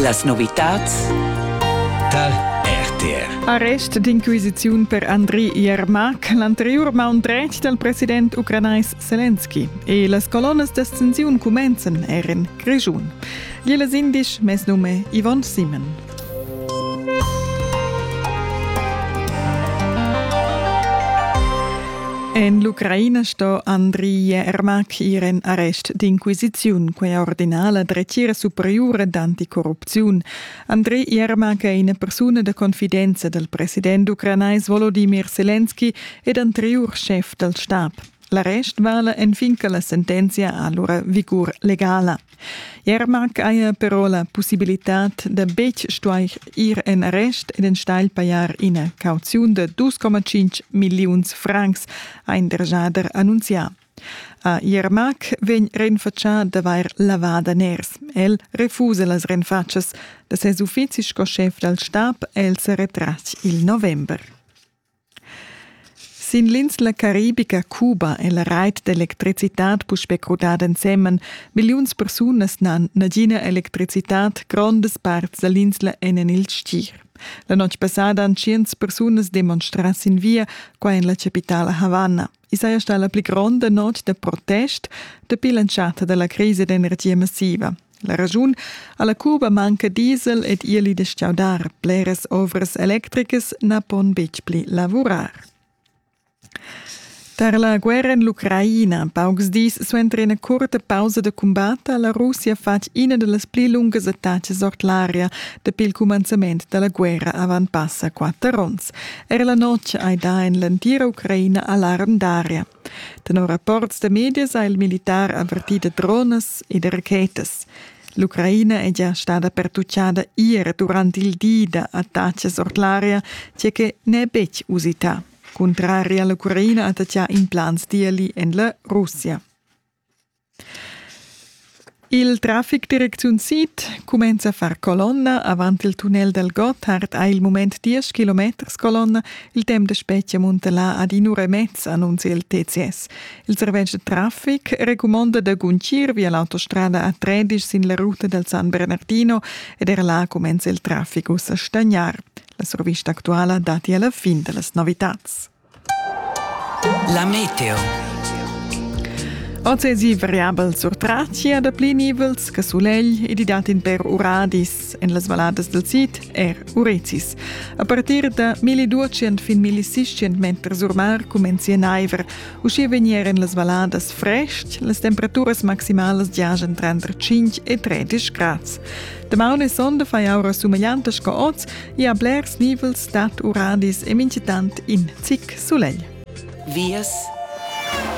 Las novitads tar RTR. Arrest d'inquisiziun per Andri Yermak, l'anteriur maun dretg dal president ucranais Zelensky. E las colonnas d'ascensiun cumenzan er en Grischun. Gli les indisch, mes num è Yvonne Simon. En l'Ucraina sto Andriy Ermak ir en arrest d'inquisiziun, quella ordina la dretgira superiura d'anticorrupziun. Andriy Ermak è ina persuna da confidenza dal president ucranais Volodimir Selenski ed anteriur schef dal stab. L'arrest vala enfin che la sentenzia ha lura vigur legala. Jermak haja però la pussibilitad da betg stuair ir en arrest ed enstagl pajar ina cauziun da 2,5 milliuns francs, ha in dergiader annunzià. A Jermak vegn renfatschà d'avair lavà daners. El refusa las renfatschas da ses uffizi sco schef dal stab. El sa retras il november. Sin l'insla caribica Cuba è la rait d'electricitad puspè crudada ensemen. Milliuns persunas n'han nagina electricitad, grondas parts da l'insla èn en il stgir. La notg passada han tschients persunas demonstrà sin via qua en la chapitala Havanna. I saja stà la pli gronda notg da protest dapi l'entschatta da la crisa d'energia massiva. La raschun a la Cuba manca diesel ed ieli da stgaudar. Bleras ovras electricas na pon betg pli lavurar. Tar la guerra en l'Ucraina, paucs dis suenter ina curta pausa da cumbat, ha la Russia fatg ina da las pli lungas attacas ord l'aria dapi il cumanzament da la guerra avant passa quatter onns. Er la notg hai dà en l'entira Ucraina alarm d'aria. Tenor rapports da medias ha il militar avvertì da dronas e da rachetas. L'Ucraina è già stada pertutgada ier durant il di da attacks ord l'aria, tge che n'è betg usità. Cuntrari a l'Ucraina attacchà implants d'ieli en la Russia. Il traffic direcziun sid cumenza a far colonna avant il tunnel dal Gotthard ha il mument 10 kilometers colonna. Il temp da spetga munta là ad in'ura e mezza, annunzia il TCS. Il servetsch da traffic recumonda da guncir via l'autostrada A13 sin la ruta dal San Bernardino ed er là cumenza il traffic uss a stagnar. La survista actuala dati alla fin da las novitads. La meteo. Oz esi variabel sur Tracia da pli nivels che sulegl ed i dat in per uradis en las valadas del sid er Urecis. A partir da 1200 fin 1600 meter sur mar comenzi naiver. Uschia vegnieren las valadas frest, las temperaturas maximalas giajan tranter 5 e 13 grads. Damaun e sonda fai aura sumegliantas sco oz e a blers nivels dat uradis e mincitant in zic sulegl. Vias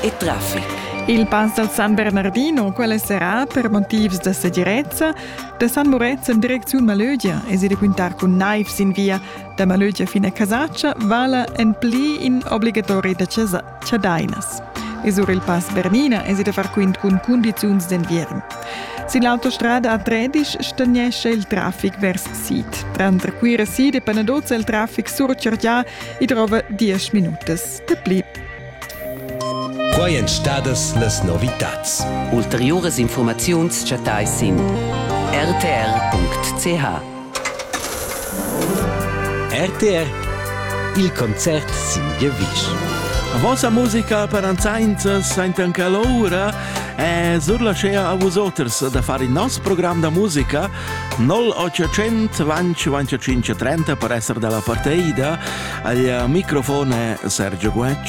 e traffic. Il pass dal San Bernardino quella serà per motivs da segirezza da San Murezzan en direcziun Malögia e si requintar cun naivs in via da Malögia fin a Casaccia vala en pli in obligatori da chasa. chadainas. E sur il Pass Bernina es i da far quint cun cundiziuns d'enviern. Sin l'autostrada a Tredisch stagnescha il traffic vers sid. Tranter Cuira sid e Panadozza il traffic surchargià e trova 10 minutas de pli. Quai èn stadas las novitads. Ulteriuras informaziuns chattais sin rtr.ch. RTR Il concert sin giavisch. Vossa musica per anzainza saintan che l'oura e surlascea a vus oters da far il nos program da musica 0800 vanci 25 30 per essere dalla parteida al microfone Sergio Guecci